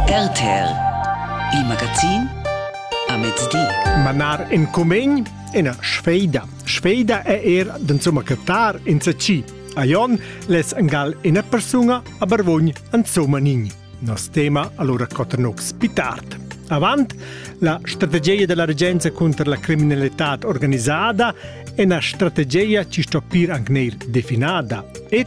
RTL Il magazin a mezdi. Manar in cumegn ina sfeida. Sfeida è er d'insumma cattar insatgi. A Jon les angal ina persuna a Barvogn insomma nin. Nos tema allora coternux pitart. Avant la strategia della regenza contro la criminalità organizzata è una strategia ci sto pir anche neir definada. Et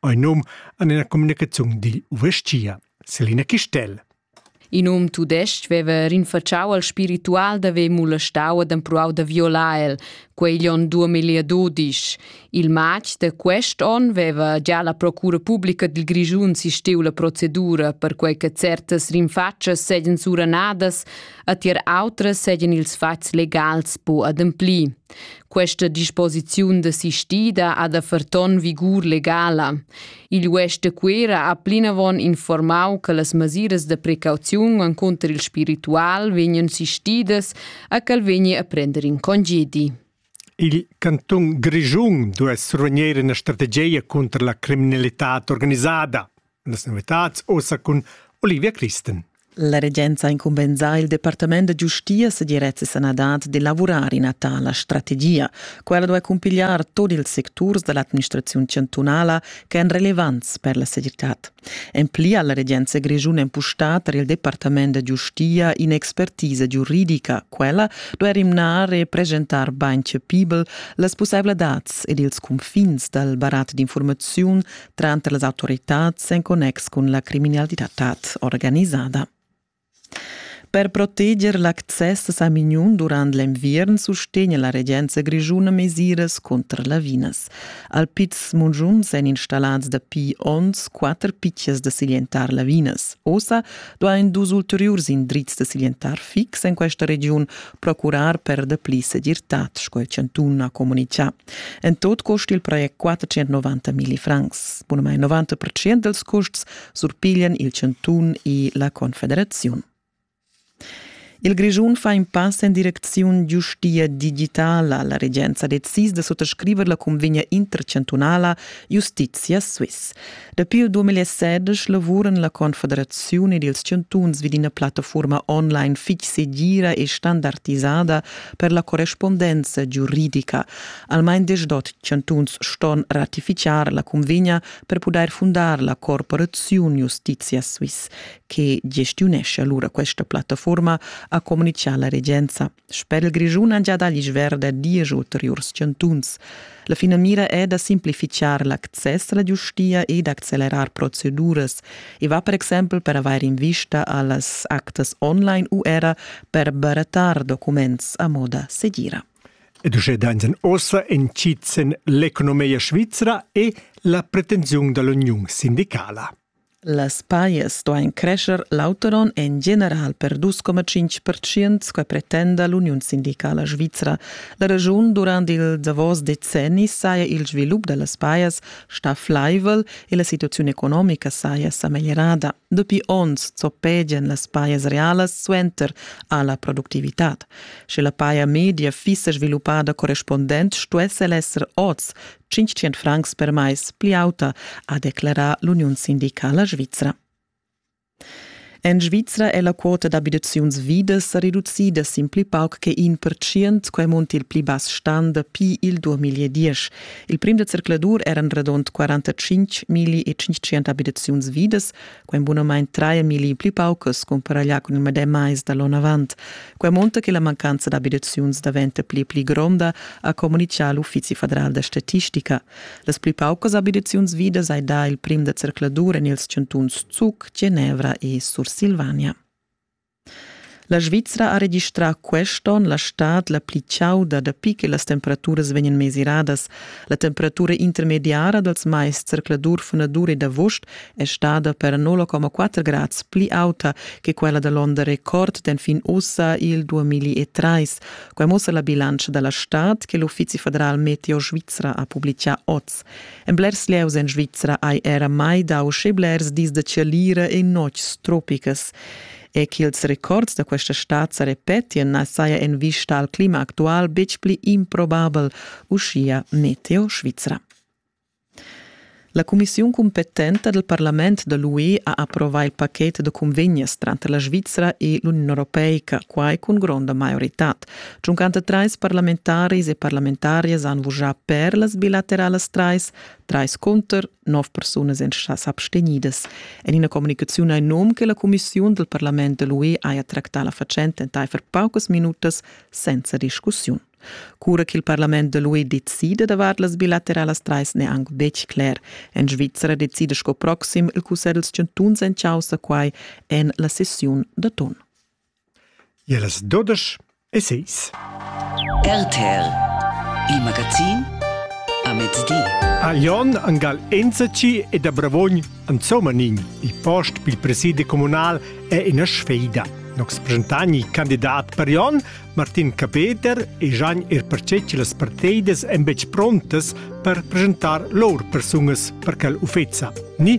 Ein num an ina communicaziun digl uvestgia, Selina Chistel. In um tudestg veva rinfacciau al spiritual da haver molestau ed empruau da violar el, quei gli onn 2012. Il matg de quest onn veva già la procura pubblica dil Grischun sisteu la procedura per quei che certas rinfaccias seigien suranadas, a tier outras seigien ils fatgs legals po ademplir. Questa disposiziun desistida ha da ferton vigur legala. Il UES de Cuera ha plinavon informau che las masiras de precauziun enconter il spiritual vegnan sistidas a quel vegni a prender in congedi. Il canton Grischun duess ruiner ina strategia contro la criminalità organisada. Las novitads ossa cun Olivia Christen. La regenza ha incumbensà il Departament da giustia e direzza e sanadad de lavurar in a tala strategia. Quella doveva cumpigliar tot ils secturs dall'administrazione chantunala che èn relevants per la segirtad. En pli ha la regenza grischuna empustà per il Departament da giustia in'expertisa giuridica. Quella doveva rimnar e presentar bain cepibel las possibilitads ed ils confins dal barat d'informaziun tranter las autoritads en connex cun la criminalitad organisada. Per proteger l'access a Mignon durant l'enviern sustegna la regenza grischuna mesiras contra lavinas. Al Piz Mungiuns èn installats dapi onns quatter pitschas da siglientar lavinas. Ossa duain dus ulteriurs indrizs da siglientar fix en questa regiun procurar per dapli segirtad, sco il chantun ha comunicà. En tot cust il project 490 milli francs. Bunamai 90% dels custs surpiglian il Chantun e la Confederaziun. Il Grischun fa in pass in direcziun giustia digitala. La regenza decisa da suttascriver la convegna intercantunala Justitia Swiss. Dapi il 2016 lavuran la Confederaziun ed ils chantuns vid ina plattafurma online fitg segira e standardisada per la correspondenza giuridica. Almain deschdot chantuns ston ratificar la cunvegna per pudair fundar la Corporaziun Justitia Swiss, che gestiunesce allura questa plattafurma, ha communichà la regenza. Spedel Grischun han giada l'isch verda diesch ulteriurs chantuns. La finamira è da simplifichar l'access alla giustia e d'accelerar proceduras. I va per exempel per avair in vista a las actas online u era per barattar documents a moda segira. Ed uschè dainsen ossa entschizzen l'economia svizra e la pretensiun da l'uniun sindicala. Las pajas stuain crescher l'auter on en general per 2,5 pertschient, sco pretenda l'uniun sindicala svizra. La regiun durant il davos decenni saja il svilup da las pajas stà flaivel e la situaziun economica saja sa meglierada. Dapi onns zoppegian las pajas realas suenter a la productivitad. Sche la paja media fissa sviluppada correspondent stuess el esser oz 500 francs per mais pli auta, ha declerà l'uniun sindicala svizra. En Svizra è la quota d'abitaziuns vidas sa reducida sin pli pauc che in percient, quai munt il pli bass stan dapi il 2010. Il prim da zercladur eran radund 45 milli e 500 abitaziuns vidas, Quei bunamein traia milli pli paucas comparaglià cun il medem mais dall'on avant. Quei monta che la mancanza d'abitaziuns daventa pli e pli gronda, ha communichà l'Uffizi federal da statistica. Las pli paucas abitaziuns vidas hai dà il prim da zercladur en ils chantuns Zug, Genevra e Sursilvania. La Svizra ha registrà quest onn la stad la pli chauda dapi che las temperaturas vegnan mesiradas. La temperatura intermediara dals mais zercladur-fenadur e d'avust è stada per 0,4 grads pli auta che quella da l'onda record d'enfin ussa il 2003. Quai mussa la bilantscha da la stad che l'Uffizi federal Meteo Svizra ha publitgà oz. En blers lieus en Svizra hai era mai dau sche blers dis da tschalira e notgs tropicas. E ch'ils records da questa stad sa repetien na saja en vista al clima actual betg pli improbabel, uschia Meteo Svizra. La cumissiun competenta del Parlament da l'UE ha approvà il pacchet da convegnes tranter la Svizra e l'Union Europeica, quai cun gronda maioritad. Tschuncanter trais parlamentaris e parlamentarias han vurgià per las bilateralas trais, trais cunter, nov persunas èn s'abstegnidas. En ina communicaziun hai num che la cumissiun dal parlament da l'UE haja tractà la fatschenta entaifer paucas minutas senza discussiun. Cura ch'il parlament da l'UE decida davart las bilateralas trais n'è anc betg cler. En Svizzera decida sco proxim il cussegl dals chantuns en chaussa quai en la sessiun da ton. Ellas dudesch e seis. RTL, il magazin a mezdi. A Jon angal enzaci e da Bravogn Anzomanin, il post pil presidi communal è ina sfeida. Nox presentani candidat per Jon, Martin Capeter e Gian er percetg las parteidas en betg prontas per presentar lor persungas per quel uffeza. Ni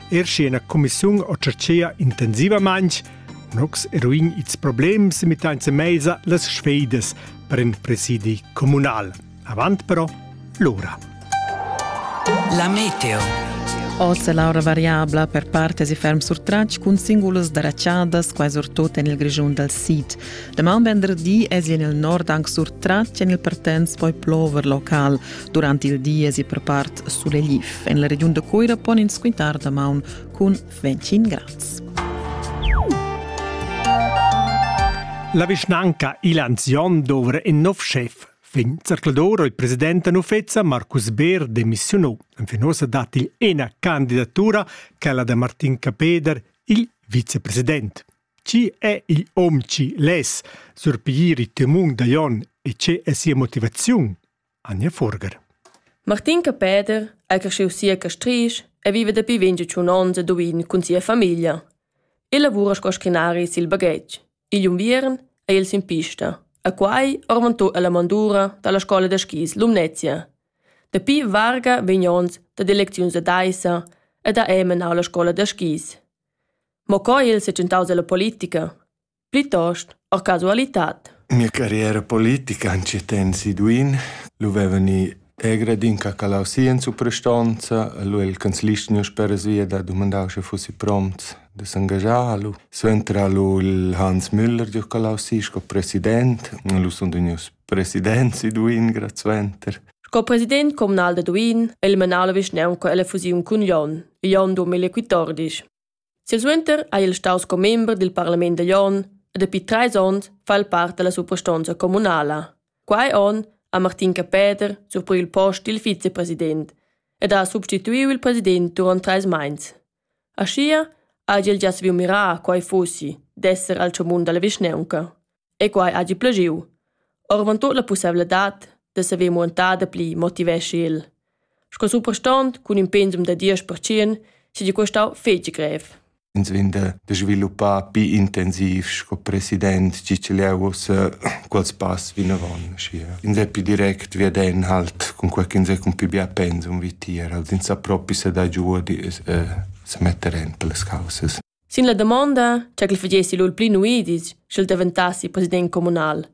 Er sche ina cumissiun o chatschea intensivamaintg, nox eruin its problems mitanza meisa las sfeidas per in presidi comunal. Avant però l'ora. La meteo. Ossa l'aura variabla per parte si ferm sur trac cun singulas dracciadas quasi surtut en il Grischun dal sid. La man venderdi es in il nord anche sur trac en il partenz poi plover local, Durant il di esi prepart sulegliv. En la regiun da Cuira pon ins quintar damaun cun Ventschin Graz. La vischnanca Ilanzion dovra in nov chef. Fin zerclador il president Nufezza Marcus Beer demissionò. Enfin ossa dat il ena candidatura, quella da Martin Capeder, il vicepresident. Ci è il om ci les, surpiglier il temun da Jon e c'è sia motivaziun? Anja Furger. Martin Capeder è cresciuto sia a Castrisch e vive dapi 25 onns a Duin cun sia famiglia. El lavura sco scrinari sil baghetg. Igl unviern è el sin pista, a quai orvantò alla mandura dalla scola da skis Lumnezia. Dapi varga vegn ons da elecziuns ad Aissa ed ha ei menau la scola da skis. Mo co el se tentaus alla politica? Plitost a casualitad. Mia carriera politica ancetens i duin, lu vevan i egre din cacalau si in suprastonza, lu il canzlist niu speras via da dumandau sche fussi prompts da s'engagiar, lu suentra lu il Hans Müller giu calau si sco president, lu sun vegnius presidents i duin grad suenter. Sco president communal da Duin el menà la vischnaunca ella fusiun cun Jon, Jon duemilaquatordisch. Silsuenter ha el stau sco member dil parlament da Jon e dapi treis onns fa el part dalla suprastonza communala. Quei onn ha Martin Capeder surpriu il post dil vicepresident ed ha substituiu il president duront treis meins. Aschia hagi el gia saviu mirar quei fussi d'esser al tschamun dalla vischnaunca. e quai hagi plagiu. Orvantut la pusseivladad da saver muentar dapli motiveschi el. Sco suprastont cun in pensum da 10% seigi questau fetg grev. Ins vegn da, da sviluppar più intensiv sco president ciciliaus quels pass vinavon. In è più direct veden halt con quel che ins è con più bia pensum vi tier, als ins sa propi se da giù di eh, se metter en per le causes. Sin la damonda, ch'el fagessi lur pli nuidis, sch'el daventassi president communal,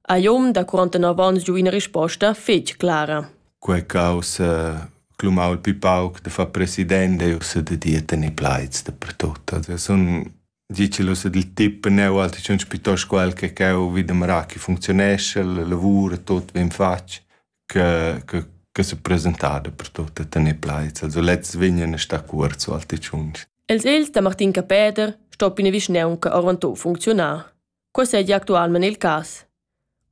ha Jom da 49 onns giu ina risposta fetg clara. Quei causa clomau il pli pauc da far president e ussa da dir tenere plaids dappertut. Also sun dicelos ed il tip neu alti schon piuttosto quel che cheu vid amara che funzionesce, il lavoro, tot ben fatg. che che che se presentada per tut e tener plaids. Also lezs vegnan a star cuort so al tschunch. Els ils da Martin Capeder sto pina vischneunca avanto funcziunar. Quei seigi actualmein il cas.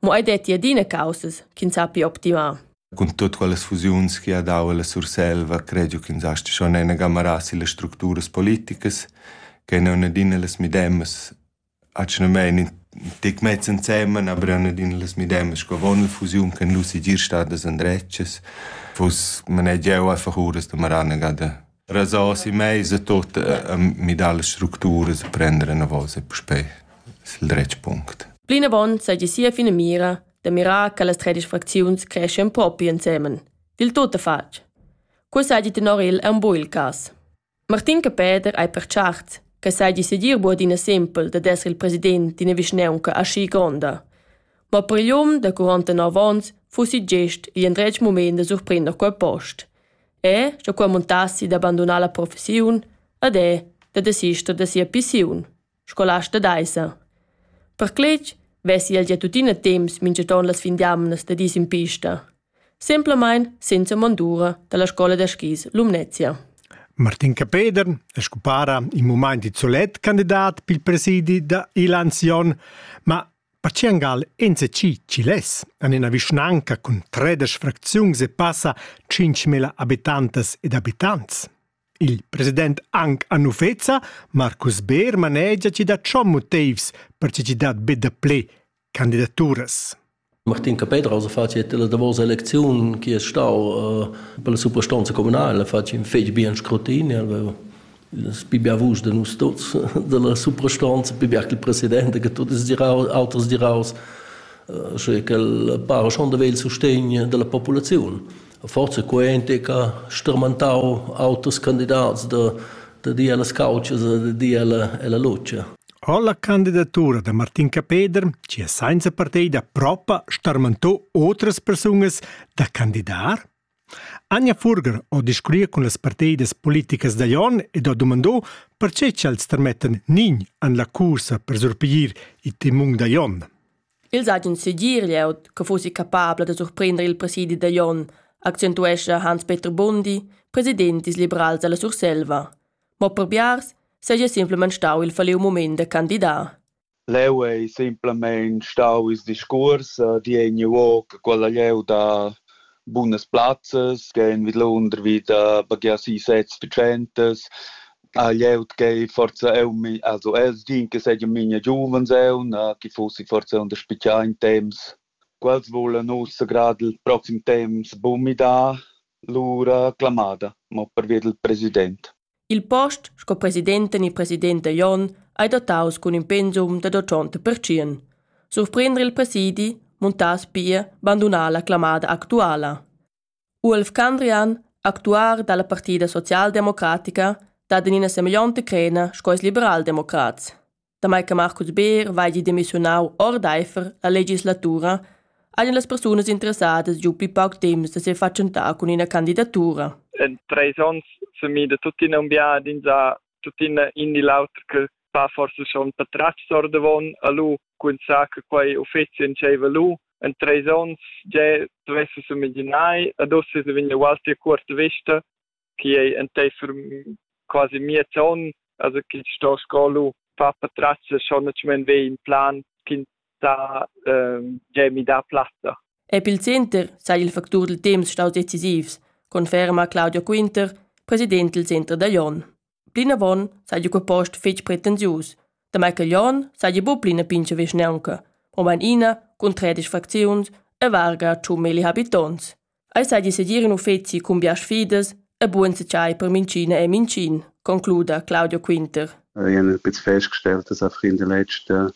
Mo ei detti adina causas ch'ins sappi optimar. Cun tut quelles fusiuns che ha dau alla Surselva, credio che ins asti schon ena gamara sille structuras politicas, che ne una adina las midemas Atgnamein in tec mezs ensemen, aber eran adina las medemas sco avon la fusiun che nus segir stadas endretgas. Fuss manegia jeu einfach uras da maranegà da rasar si meisa tot a midar las structuras e prender enavos e puspei sil dretg punct. Plinavon seigi sia finamira da mirar che las tredisch fracziuns creschien propi ensemen. Dil tut fatg. Quei seigi tenor el aunc buc il cass. Martin Capeder ei pertscharts che seigi segir buc adina sempel dad esser il president d'ina vischnaunca aschi gronda. Mo per igl um da quarantanove onns fussi gest igl endretg mument da surprender quei post. E, sche quei muntassi da bandunar la professiun, ad è da desister da sia pissiun. scolasta daissa. Per cletg vessi el gia tuttina temps minchaton las fin d'amnas da dis in pista. Semplamain senza mondura dalla scola da skis Lumnezia. Martin Capeder è scupara in moment di solet candidat per il presidi da Ilanzion, ma Paciangal NCC Ciles an ena vischnanca cun tredesch fracziuns e passa 5.000 abitantas ed abitants. Il president anc a Nufeza, Marcus Beer, manegia ch'i dat schon motivs per che ch'i dat be dapli candidaturas. Martin Capedras ha fatg la davos elecziun che è stau uh, per la suprastanza communale, ha fatg in fetg bien scrutin, aveva pibià vusch de nus tuts della suprastanza, pibià che il presidente, che tutti altri diraus, uh, che quel pare schon de il sostegno della popolazione. forza quente che stermentau auters candidats da da dir allas couchas e da dir alla, alla lucia. Ho la candidatura da Martin Capeder, ci ha senza partida propa starmentò otras persunas da candidar? Anja Furger ho discurriu cun las partidas politicas da Jon ed ho dumandò perche ch'els termettan nin an la cursa per surpiglier il timung da Jon. Els hagien segir glieud che fussi capabla da surprender il presidi da Jon, accentuescha Hans-Peter Bundi, president dils liberals dalla Surselva. Mo per biars seigi simplamain stau il falliu mument da candidar. Leu ei simplamain stau il discurs eh, di egni uo che quella leu da bunas plazzas, che en vidlunder vi da bagia si sezs picentas, Ah jeu tgei forza eu mi also els din che seigi minia giuvens eu na chi fussi forza un da spichar in temps quels vulan ussa grad il proxim temps bumidar lura clamada mo pervia dal president Il post sco presidenten e president dagl onn ei dotaus cun in pensum dad otschonta pertschien. Surprender il presidi, muntar spia, bandunar la clamada actuala. Uolf Candrian, actuar da la partida socialdemocratica, dat en ina semeglionta crena sco ils liberaldemocrats. Damai che Marcus Beer vegli demissiunau ordeifer la legislatura, ein las persunas interessadas giu pli pauc temps da sefatschentar cun ina candidatura. En treis onns semida tuttina un biadin sa tuttina in di l'auter che va forse schon patratgs ordavon a lu cun sa che quei uffizi entscheiva lu en treis onns ge dovesse s'imaginai ad osses de vegna ualti cuorta vista che ei enteifer quasi miez on also che sto scolu fa patrazza schon netschmen ve in plan kin ta ähm, ge mi da platta Ep il center sai il factur del temps staus decisivs, conferma Claudio Quinter, president del Center da Jon. Plinavon seigi quei post fetg pretensius, damai ch'igl onn seigi buca pli ina pintga vischnaunca, mobein ina cun tredic fracziuns e varga tschun milli habitonts. Ei seigi segir in uffeci cun bias fidas e bugen setschai per minchina e mincin, concluda Claudio Quinter. Ich habe jetzt festgestellt, dass auch in den letzten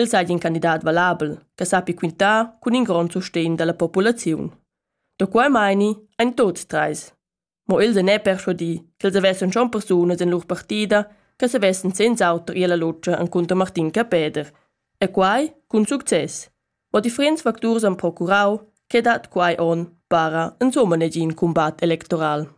El seigi in candidat valabel che sappi quintar cun in grond sustegn dalla populaziun. Da quei meini ein tuts treis. Mo els ein er perschuadi ch'els havessen schon persunas en lur partida che savessen senz'auter ir alla lutscha encunter Martin Capeder. E quai cun success. Ma differents facturs han procurau che dat quei onn para insomma negin cumbat electoral.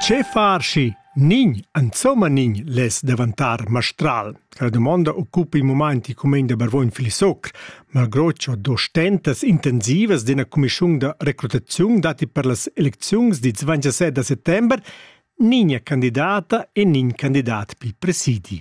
Che far schi? Nin, insomma nin, les davantar mastral. La domanda occupa il moment il comune de Barvogn Filisocr, malgroccio do stentas intensivas d'una commissione de recrutazione dati per las eleczioni di 27 de settembre, nin è candidata e nin candidat pi presidi.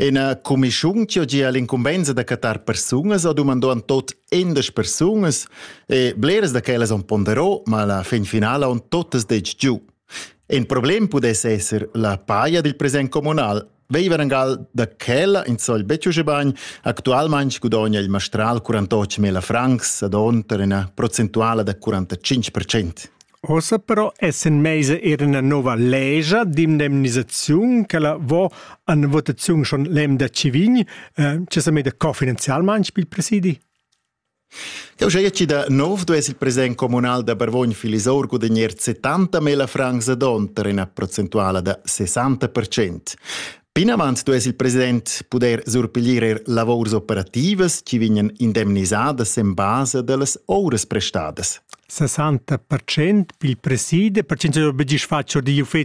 Ina cumischun che gia l'incumbensa da cattar persunas ha dumandò an tot endas persunas e bleras da quellas han ponderò, ma la fin finala han totas detg giu. In problem pudess esser la paia dil present communal. Veiver angal da quella in sol betg uschè bagn, actualmente gudogna il mastral 48.000 francs ad onter ina procentuala da 45%. Ossa però essan meisa eir üna nouva legia d'indemnisaziun ch'ella vo a üna votaziun schon l'emda chi vegn, eh, chi s'ha meda cofinanzialmaing pel presidi. Eu giaja chi da nov duess il president comunal da Barvogn Filisour gudagnir 70 mila francs ad onn per üna procentuala da 60%. Plinavant duess il president pudair surpiglier er lavurs operativas che vegnan indemnisadas en basa da las ovras prestadas. 60% pil preside, perché non obligis fatg di uffeci